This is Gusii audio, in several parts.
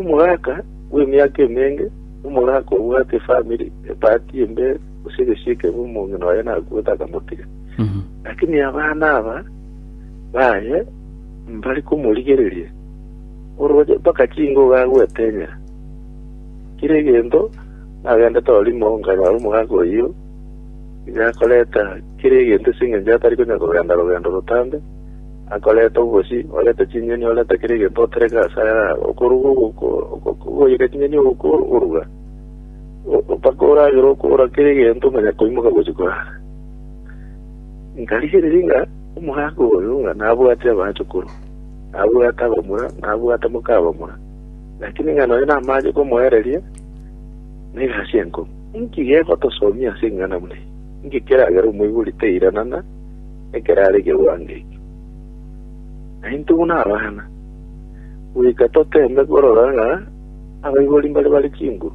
Omogaka bw'emiaka emenge, omogaka obwate efamiri, epaati embe, gose egesio ekebe omong'ina oye nakuete akamotiga. Lakini abana aba baye mbari komorigereria, oroche mpaka chingogo agoetenyera. Kera egento nagendete orimo nkanyora omogaka oyio nigo akoreta kera egento ase eng'encho atari konya kogenda rogendo rotambe, Akoreta obosio, oreta chinyeni, oreta kera egento otereka ase ayare aya, okoruga ogoika chinyeni okoruga, mpaka oragere okora kera egento manya koimoka gochia korara. Nkarigereria ng'a omogaka oyo ng'a nabwate abachukuru, nabwate abamura, nabwate moka abamura, lakini ng'a nonya namache komoereria negasi enkong'u. Inki gegotosomia ase eng'ana buna eye? Inki keragere omoibori tairanana? Ekero are kewango ekio, naintwe buna abana, goika toteeme korora ng'a abaibori mbare bare chinguru,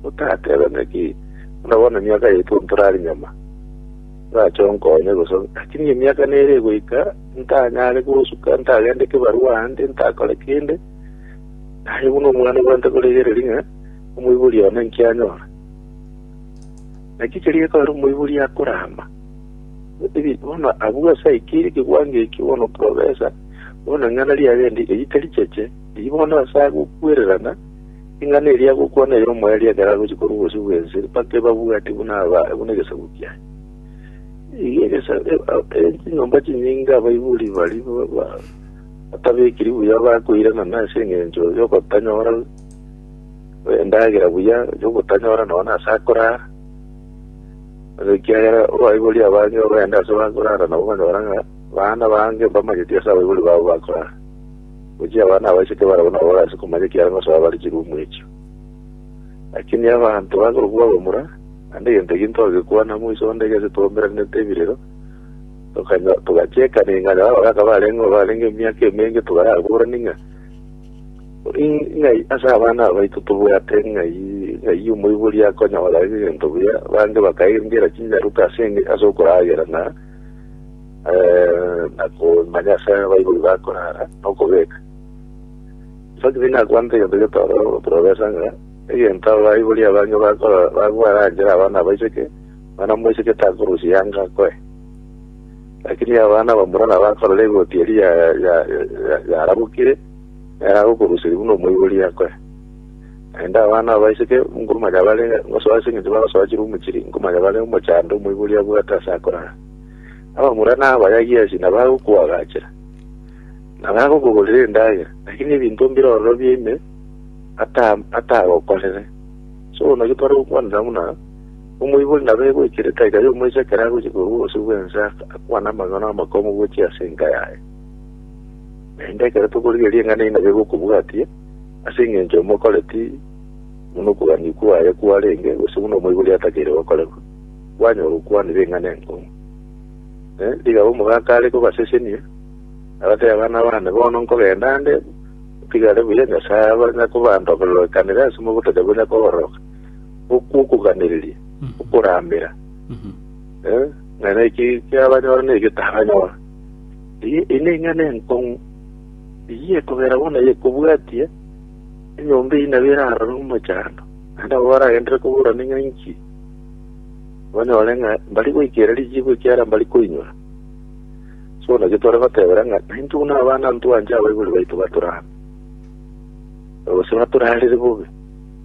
gotateba ng'aki buna bono emiaka yaito ntore are nyama, orache onkonye, gose lakini emiaka nere egoika ntanyare kosuka, ntagende kebarua aande, ntakore kende, naye buna omwana obwate korigereria ng'a omoibori one inki anyora. Naki keria ekero omoibori akorama, Gose bono agwo asaikire ekeguango ekio, bono porobesa, bono ing'ana riagende erio taricheche, erio bono ase agokwererana, ing'ana eria agokwana ere omoerio ekero agochia korwa obosio bw'ense, mpaka ebabwati buna aba buna egesaku kiaye. Iga egesa- e- a- e- chinyomba chinyinge abaibori baria ba- ba- batabekiri buya bakoirana nase eng'encho y'ogotanyora endagera buya, y'ogotanyora nonya ase akorara, Ase ekiagera abaibori abange babaende ase bakorara nabo bakabora ng'a baana bange mbamanyeti ase abaibori babo bakorara. Gochia abana abaiseke barabwo nabo bagasa komanya ekiagera ngosoa bare chirumu echio. Lakini abanto bakorokwa abamura, naende egento ekio ntogekwana moiso onde gese twaumeraneete ebirero, tokanyo- togachekana ing'ana abagaka barenge barenge emiaka emenge togaraburana ing'ana. Ng'ai ase abana abaito tobwate ng'ai ng'ai omoibori akonyora egento buya, bange bakairengera chinyaruka ase enge ase okoragera na eh, na komanya ase abaibori bakorara na okobeka. Saki bina kwanta egento getoro profesa ng'a egento abaibori abange bakora bagwaranjera abana abaiseke, mwana moiseke takorusia yanga akoe. Lakini abana bamura nabakorora egoti eria yarabokire, nere agokoruseria buna omoibori akoe. Naende abana abo baiseke, nkomanya bare ngosoa ase eng'encho bagosoa chirumu chiria, nkomanya bare omochando omoibori abwate ase akorara. Abamura nabayagi ase inwe bagokoagachera, na bagokogorera endagera, lakini ebinto mbire ororobia ime atagokorere. Ase bono naki tware gokwanera buna. Omoibori naro egwechera etaika y'omoiso ekero agochia korwa obosio bw'ense akwane amang'ana amakongu gochia ase enka yaye. Naende ekero tokorigereria eng'ana eyio nabo egokobwatia, ase engencho omokoreti buna okogania kwaye kwarenge, gose buna omoibori atakeire gokorerwa, kwanyora okwanire eng'ana enkong'u. Eh, rigabo omogaka are kobasesenia, abatebe, Abana baane, bono nkogenda ande, otigare buya, Nyasae abanyare kobandokererokanere ase mogotacha bore kobororoka. okw'okoganereria okoramera, eh, ng'a naki kiabanyora na ekio taranyora. Eye eye neng'ana enkong'u, eyio ekogera bono yekobwatia enyomba eyio nabo erarore omochando, naende abwo baragenderere koburana ng'a inki, banyore ng'a mbari goikera richiiko ekiara mbari koinyora. So naki tore gotebera ng'a naintwe buna abana ntwanche abaibori baito batorame, gose batorarere bobe.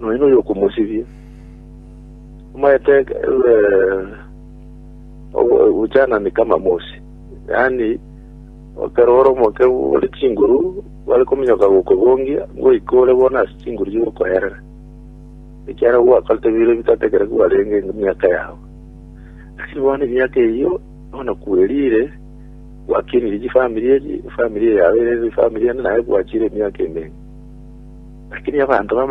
Nonya noyokomosibia, omaete obochaanani kama mosi, yaani ekero ore omokeu ore chinguru bare kominyoka gokogongia, ngoika ore bono ase chinguru chigokoerera, ekiagera gwakorete bire bitategerekire kwarenge emiaka yao. Lakini bono emiaka eyio bono kwerire, gwakenirie chifamiri echi, efamiri eye yao erere efamiri ende naye gwachire emiaka emenge. Lakini abanto bamanyire.